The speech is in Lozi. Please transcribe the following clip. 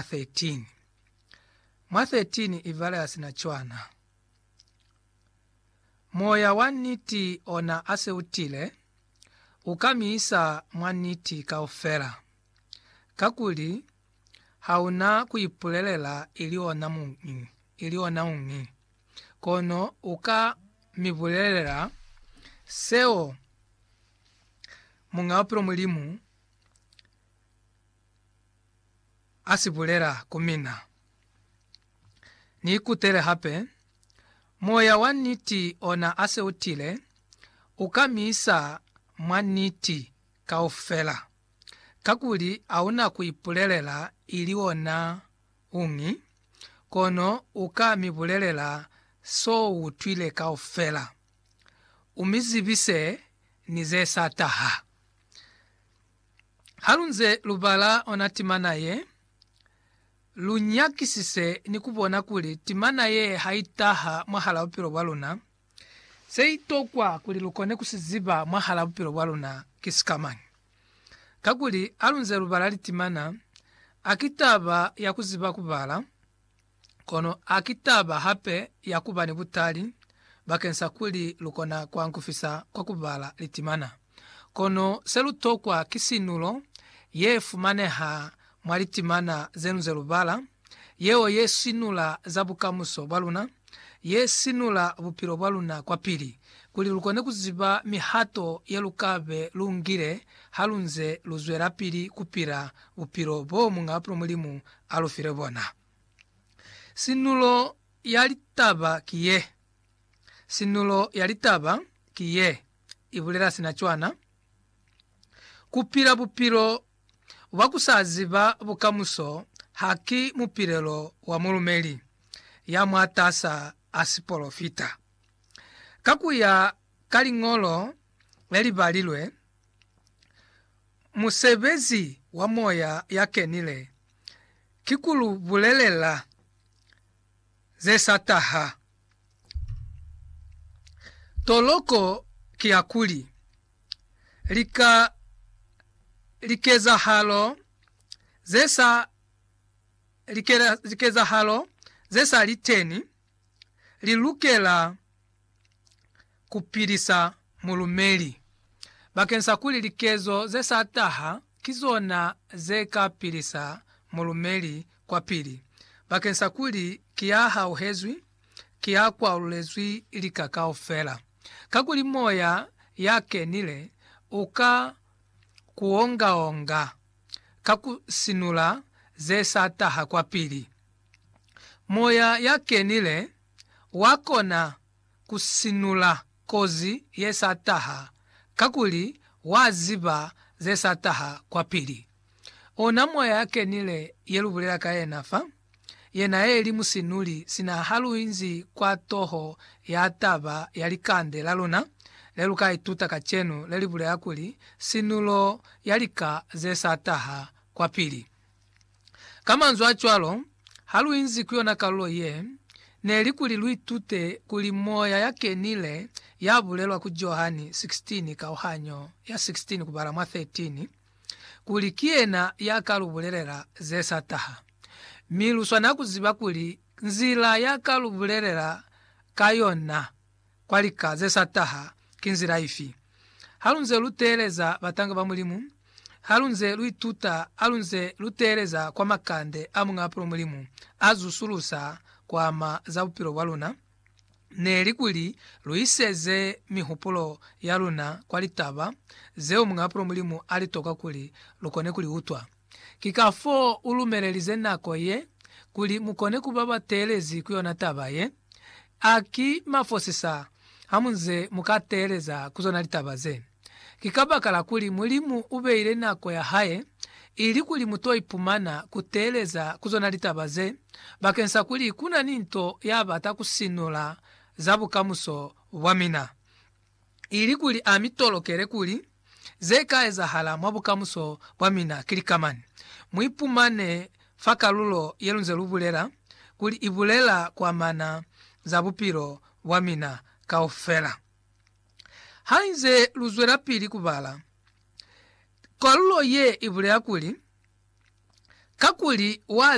13. Mwa 13 i vale ha si na cwana. Moya wa niti ona a se u tile, u ka mi isa mwa niti kaufela, kakuli ha u na ku ipulelela ili ona muñi, ili ona uñi, kono u ka mi bulelela seo Muñ'a Bupilo Mulimu a si bulela ku mina. Ni ikutele hape, Moya wa niti ona a se u tile, u ka mi isa mwa niti kaufela, kakuli a u na ku ipulelela ili ona uñi, kono u ka mi bulelela s'o utwile kaufela, u mi zibise ni ze sa taha. Halunze lubala ona timana ye, lunyakisise ni kubona kuli timana ye haitaha mwahala bupilo bwaluna, seitokwa kuli lukone kusiziba mwahala bupilo bwaluna ki sikamañi. Kakuli halunze lubala litimana, haki taba ya kuziba kubala, Kono a ki taba hape ya ku ba ni butali bakeng sa kuli lu kona ku ankufisa kwa ku bala litimana. Kono se lu tokwa ki sinulo ye fumaneha mwa litimana ze lu ze lu bala, yeo ye sinula za bukamuso bwa luna, ye sinula bupilo bwa luna kwapili, kuli lu kone ku ziba mihato ye lu ka be lu ngile ha lu nze lu zwelapili ku pila bupilo boo Muñ'a Mulimu a lu file bona. Sinulo ya litaba ki ye. Sinulo ya litaba ki ye, i bulela sina cwana, Ku pila bupilo bwa ku sa ziba bukamuso haki mupilelo wa mulumeli ya mwatas'a a sipolofita. Ka ku ya ka liñolo le li balilwe, musebezi wa Moya ya Kenile ki ku lu bulelela ze sa taha. Toloko ki ya kuli, lika, likezahalo ze sa, likezahalo ze sa li teni li lukela ku pilisa mulumeli bakeng sa kuli likezo ze sa taha ki zona ze ka pilisa mulumeli kwapili bakeng sa kuli ki ya hauhezwi, ki ya kwalulezwi lika kaufela. Kakuli Moya ya Kenile u ka ku onga-onga ka ku sinula ze sa taha kwapili. Moya ya Kenile wa kona ku sinula kozi ye sa taha, kakuli wa ziba ze sa taha kwapili. Ona moya ya kenile ye lu bulela ka yena fa, yena eli musinuli sina ha lu inzi kwa toho ya taba ya likande la luna le lu ka ituta kacenu le li bulela kuli, Sinulo ya lika ze sa taha kwapili. Ka manzwi a cwalo, ha lu inzi ku yona kalulo ye, ne li kuli lu itute kuli moya ya kenile ya bulelwa ku Johani 16, kauhanyo ya 16 kubala mwa 13, kuli ki yena ya ka lu bulelela ze sa taha. Mi lu swanela ku ziba kuli nzila ya ka lu bulelela ka yona kwa lika ze sa taha ki nzila ifi? Ha lu nze lu teeleza batanga ba Mulimu, ha lu nze lu ituta, ha lu nze lu teeleza kwa makande a Muñ'a Pulo Mulimu a zusulusa ku ama za bupilo bwa luna, ne li kuli lu iseze mihupulo ya luna kwa litaba zeo Muñ'a Pulo Mulimu a li toka kuli lu kone ku li utwa. Ki kafoo u lumelelize nako ye, kuli mu kone ku ba ba teelezi ku yona taba ye. A ki mafosisa ha mu nze mu ka teeleza ku zona litaba ze! Ki kabakala kuli Mulimu u beile nako ya hae, ili kuli mu to ipumana ku teeleza ku zona litaba ze, bakeng sa kuli ku na ni nto ya bata ku sinula za bukamuso bwa mina. ili kuli a mi tolokele kuli ze ka ezahala mwa bukamuso bwa mina ki lika mani. Mu ipumane fa kalulo ye lunze lu bulela kuli i bulela kuamana za bupilo bwa mina kaufela. Hainze lu zwelapili ku bala, kalulo ye i bulela kuli, Kakuli wa